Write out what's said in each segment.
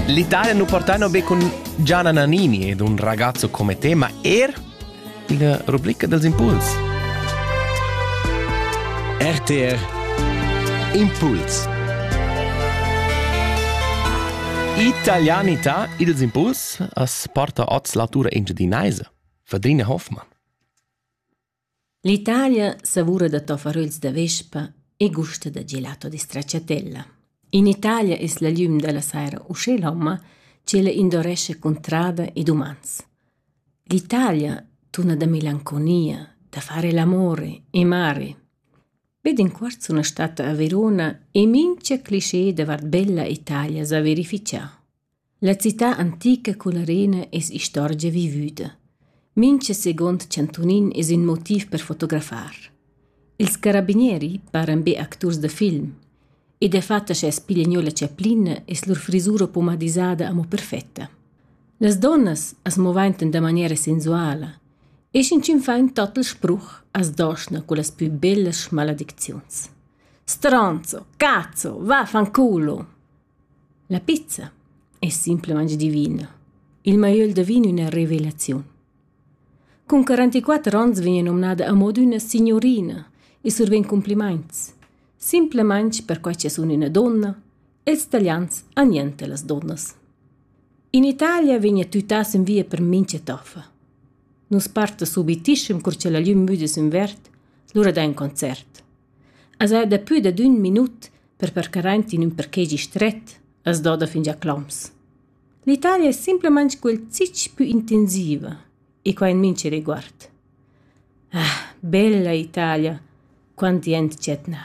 L'Italia nu portano be cun Gianna Nannini ed un ragazzo come te, ma er la rubrica dels impuls. RTR Impuls Italianità ils impuls as porta oz l'autura engiadinaisa Fadrina Hoffmann. L'Italia savura da toffaröls da vespa e gusta da gelato da stracciatella. In Italia es la gliüm da la saira uschè lomma ch'ella indorescha cuntrada ed umans. L'Italia tuna da melanconia, da fare l'amore e mari. Be d'inquart sun stata a Verona e mincha clisché davart bella Italia s'ha verifichà. La cità antica culla arena es istorgia vivüda. Mincha seguond chantunin es ün motiv per fotografar. Ils carabinieri paran be acturs da film. E dafatta scha es piglia gnö la chaplina es lur frisura pomadisada amo perfetta. Las donnas as movaintan da maniera sensuala e sch'inchün fa ün total spruch as doschna cullas pü bellas schmaladicziuns. Stronzo, cazzo, vaffanculo! La pizza es simplamaing divina. Il maiöl da vin üna revelaziun. Cun 44 ons vegn nomnada a mod üna signurina e survegn cumplimaints. Simplamaing perquai cha sun üna donna e ils talians han niente las donnas. In Italia vegna tütà sün via per mincha toffa. Nus parta subitischem cur cha la glüm müda sün verd, lura da ün concert. As ha daplü dad ün minut per percar aint in ün parkegi stret, as doda fingià cloms. L'Italia es simplamaing quel zich pü intensiva e quai in mincha riguard. Ah, bella Italia, quant di aint dschet na.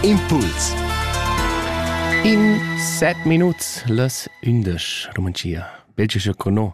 Impuls In set minuts las ündesch Romantia. Belgescha co no